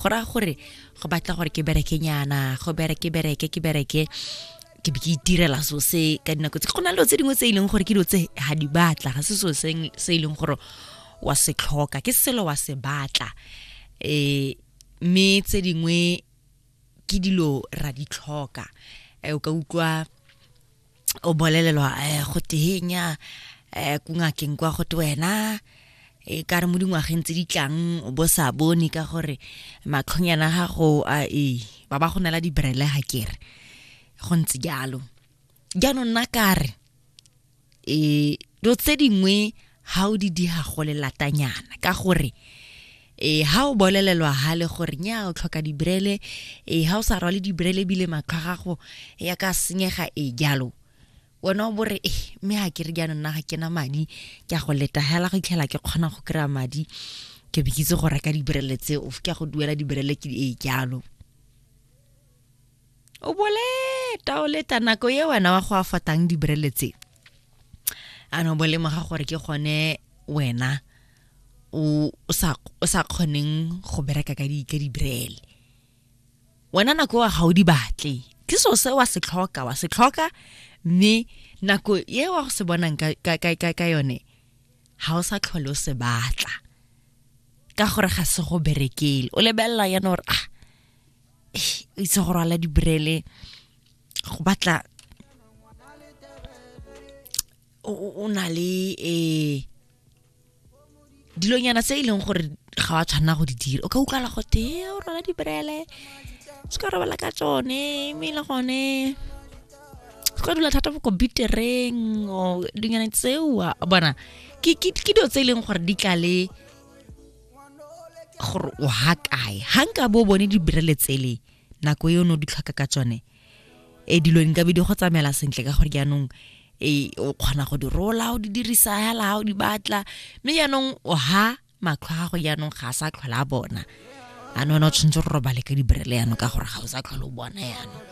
go raya gore go batla gore ke bereke nyana go bereke bereke ke bereke ke be ke itirela so se ka dinako tse go na le tse dingwe tse e leng gore ke dilo tse ga di batla ga se so se e leng gore wa se tlhoka ke selo wa se batla um mme tse dingwe ke dilo ra di tlhoka eh, o ka utlwa o bolelelwa eh, go tehenya eh, kungakeng kwa go te wena e ka re mo dingwageng tse di tlang o bo sa bone ka gore matlhonyana gago a e ba ba go nela dibrele ga kere go ntse jalo jaanong nna kare e dilo tse dingwe ga o di diga go lelatanyana ka gore e ha o bolelelwa hale gore nya o tlhoka dibrele e ha o sa rwale dibrele bile matlho gago ya ka senyega e jalo wena o bore e mme ga ke re jaanong nna ga ke na madi ke a go leta hela go itlhela ke kgona go kry-a madi ke be ke itse go reka dibrele tseo ke a go duela dibrele ke e jalo o boleta o leta nako ye wena wa go afatang dibrele tse a no bolemoga gore ke gone wena o o sa o sa kgoneng go bereka ka di ka dibrele wena nako wa ga o di batle ke so se wa se tlhoka wa se tlhoka mme nako ye wa go se bonang ka ka ka ka- ka yone ga o sa tlhole o se batla ka gore ga se go berekele o lebelela yana gore ah itse go rwala dibrele go batla o na le um dilonyana tse e leng gore ga wa tshwanela go di dira o ka utlwala go te o rwala dibrele se ka robala ka tsone mme e le gone se ka dula thata mo computereng o dilonyana tseo bona ke dilo tse e leng gore di tla le gore o ha kae ga nka bo bone dibrele tsele nako e o ne o di tlhoka ka tsone e dilo nka be di go tsamaela sentle ka gore jaanong e o kgona go di rola o di dirisa hela o di batla mme jaanong o ha matlho a gago jaanong ga a sa tlhola a bona a ne ona o tshwanetse go robale ka dibrele jaanong ka gore ga o sa tlhola o bona jaanong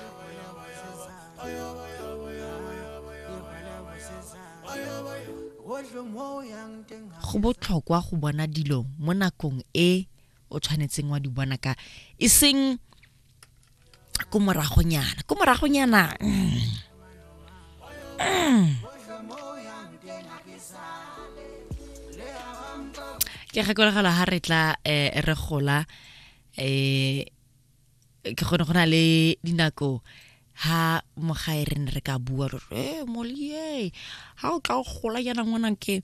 go botlhokwa go bona dilo mo nakong e o tshwanetseng wa di bona ka e seng ko moragonyana ko moragonyana mm, mm. ke gakologela ga re tla um re gola um ke gone go na le dinako ha mogae re ne re ka bua re re e molie ha o tla o gola yana ngwanang ke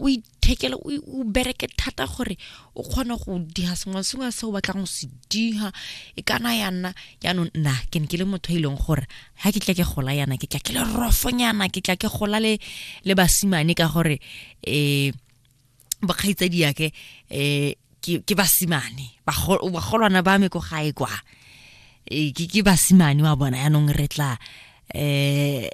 o ithekele o i- o bereke thata gore o kgone go diha sengwe le sengwe se o batlang go se diha e kana ya nna jaanong nna ke ne ke le motho e leng gore ga ke tla ke gola yana ke tla ke le rofonyana ke tla ke gola le le basimane ka gore um bakgaitsadi yake eh ke ke basimane Bago- bagolwana ba me ko gae kwa Eh, ke ke basimane wa bona yanong re tla eh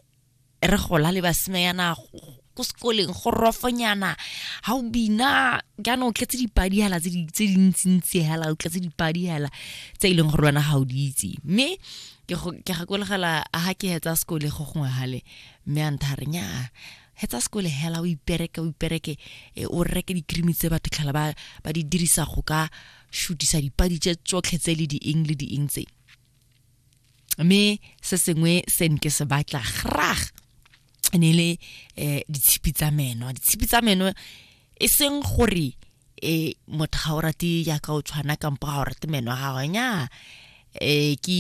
re gola le basimanyana go- ko sekoleng go rofonyana ga o bina jaanong o tletse dipadi hela tse di- tse dintsintsi hela o tletse dipadi hela tse e leng gore wena ga o di itse mme ke go- ke gakolegela ga ke hetsa sekole go gongwe gale mme a ntha re nyaa hetsa sekole hela o ipereke o ipereke e, o reke dikrimi tse batho tlhala ba ba di dirisa go ka shutisa dipadi tse tsotlhe tse le di eng le di eng tse mme se sengwe se nke se batla grag e ne le um ditshipi tsa meno ditshipi tsa meno e seng gore um motho ga o rate yaka o tshwana kampo ga o rate meno a gagwe nya um ke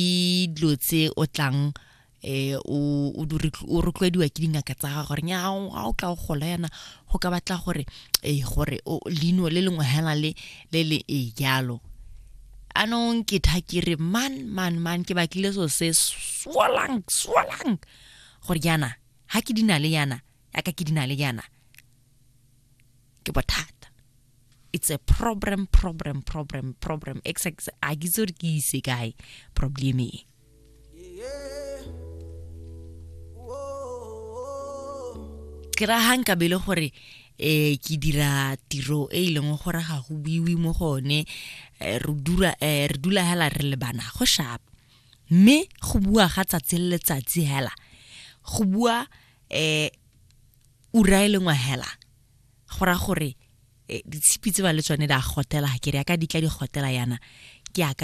dilo tse o tlang eh o o rotloediwa ke dingaka tsa ga gore nya ga o tla o gola yana go ka batla gore eh gore lino le lengwe hela le le le e jalo anong ke tha ke re man man man ke batlile so se swalang swalang gore yana ha ke dina le yana ya ka ke dina le yana ke bothata it's a problem problem problem problem ex ex a ke itse gore ke ise kae problem e ke ra hang ka bele gore eh ke dira tiro e e leng gore ga go buiwe mo gone eh, re dura eh, re dula hela re le bana go shap mme go bua ga tsatsi le letsatsi hela go bua eh ura e lengwe hela go raya gore e, ditshipi tse ba le tsone di a gotela ke re ya ka di tla di gotela yana ke yaka